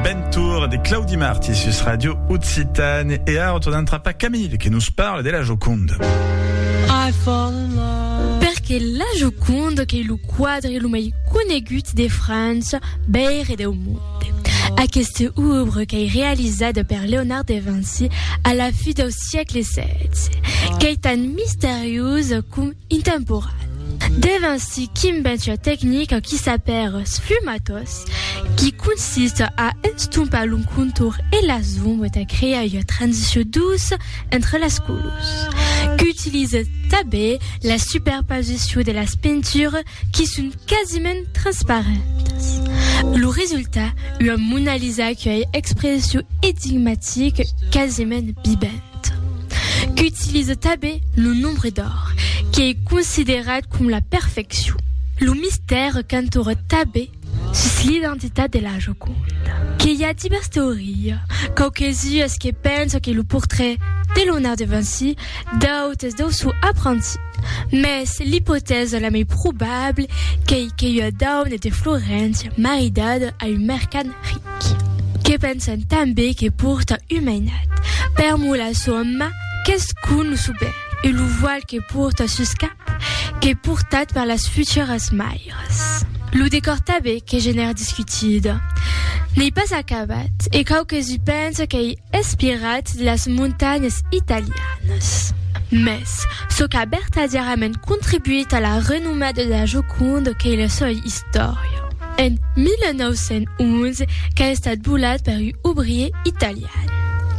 Bentour de Claudi Marti sus Radio Occitane e ara tornam trapar Camille que nos parle de la Joconde. Perque la Joconde qu'ei lo quadre lo mei conegut de França, Beir e deu monde. Aqueste oeuvre qu'ei realizada per Leonard de Vinci a la fi deu siecle 16 qu'ei tan misteriosa com Intemporal. Dève ainsi qu'inventia tecnica qui s'apèra sfumatos, qui consista a estompar lo contorn e las ombres tà crear ua transició douça entre las colors. Qu'utilize tanben la superposició de las pintures qui son quasiment transparentas. Lo resultat, ua Mona Lisa que ai expression énigmatique quasiment bibent qu'utilise tabé lo nombre d'or, qu'ei considerat com la perfeccion. Lo mistère qu'entoure tabé sus l'identitat de la Joconda. Que i a divers teoria, quauques-uas que pensan que lo portrait de Leonard de Vinci D'autes deu sò apranti, mès l'ipotèsa la mei probable qu'ei qu'ei ua dauna de Floréncia maridada a un mercant ric, que pensan tanben que porta un mainat, per mor la soma qu'es con lo soben e lo voal que porta sus cap qu'ei portat per las futuras maires. Lo decòr tanben qu'ei genèr discutida, n'ei pas acabat e quauques i pensan qu'ei Espirat de las montanhas italianas. Mès, çò qu'a bertadièrament contribuït a la renomada de la Joconde qu'ei la soa istòria. En 1911 qu'a estat volat per un obrier italian,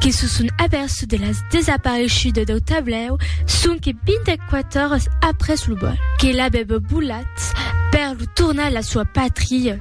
que se son aperçut de las desapareishudas dau tablèu sonque 24 oras après lo vòl, que l'avèva volat per lo tornar a la soa patria.